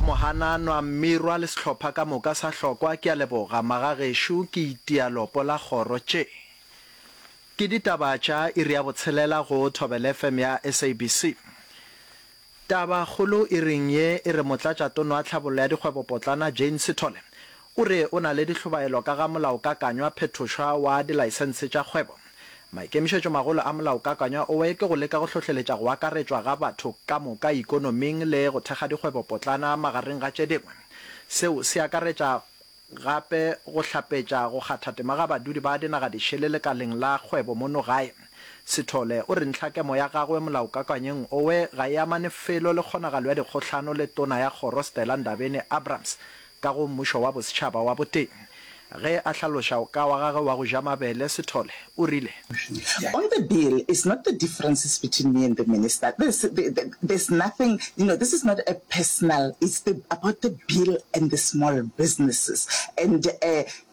Mohananwa, Mmirwa le sehlopha ka moka sa Hlokwa ke a leboga magagešo ke itia lopo la kgoro tše ke ditaba tša iri ya botshelela go Thobela FM ya SABC. Taba kgolo iring ye e re Motlatšatono wa Tlhabollo ya Dikgwebopotlana Jane Sithole O re o na le dihlobaelo ka ga molaokakanywa phethošwa wa dilaesense tša kgwebo. Maikemišetšomagolo a molaokakanywa owe ke go leka go hlohleletša go akaretšwa ga batho ka moka ikonoming le go thekga dikgwebopotlana magareng ga tše dingwe. Seo se akaretša gape go hlapetša go kgatha tema ga badudi ba dinagadišele lekaleng la kgwebo mono gae. Sithole o re ntlhakemo ya gagwe molaokakanyeng owe ga e amane felo le kgonagalo ya dikgohlano le tona ya kgoro Stella Ndabeni-Abrahams ka go Mmušo wa Bosetšhaba wa Boteng. Ge a hlaloša o ka wa gage wa go ja mabele, Sithole o rile. On the bill, it's not the differences between me and the minister, there's there's nothing, you know, this is not a personal, it's the about the bill and the small businesses and uh,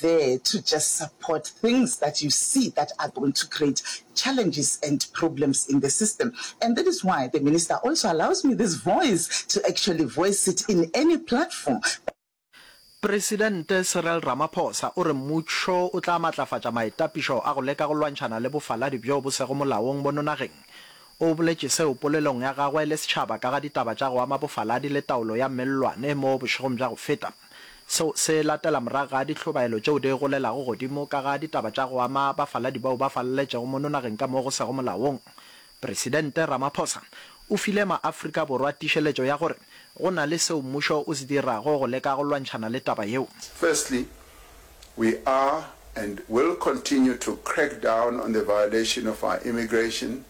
there to just support things that you see that are going to create challenges and problems in the system and that is why the Minister also allows me this voice to actually voice it in any platform. Presidente Cyril Ramaphosa o re mmušo o tla matlafatša maitapišo a go leka go lwantšhana le bofaladi bjo bo sego molaong bono nageng. O boletše seo polelong ya gagwe le setšhaba ka ga ditaba tša go ama bofaladi le taolo ya mellwane mo bošegong bja go feta. Seo se latela morago ga dihlobaelo tšeo di golelago godimo ka ga ditaba tša go ama bafaladi bao ba faleletšego mono nageng ka mo go sego molaong. Presidente Ramaphosa o file maAfrika Borwa tišeletšo ya gore go na le seo mmušo o se dirago go leka go lwantšhana le taba yeo. Firstly, we are and will continue to crack down on the violation of our immigration,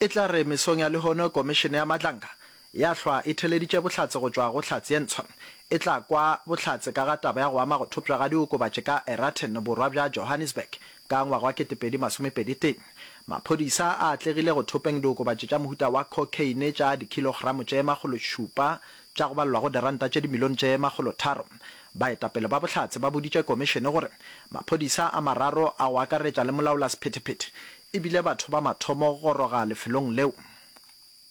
E tla re mesong ya lehono Komišene ya Matlanka ya hlwa e theleditše bohlatse go tšwa go Hlatse ye Ntshwa. E tla kwa bohlatse ka ga taba ya go ama go thopšwa ga diokobatši ka Eraten, borwa bja Johannesburg, ka ngwaga wa 2021. Maphodisa a atlegile go thopeng diokobatši tša mohuta wa cocaine tša dikhilogramo tše makgološupa tša go balelwago diranta tše dimilione tše makgolotharo. Baetapele ba Bohlatse ba boditše komišene gore maphodisa a mararo a go akaretša le molaolasephetephete e bile batho ba mathomo go goroga lefelong leo.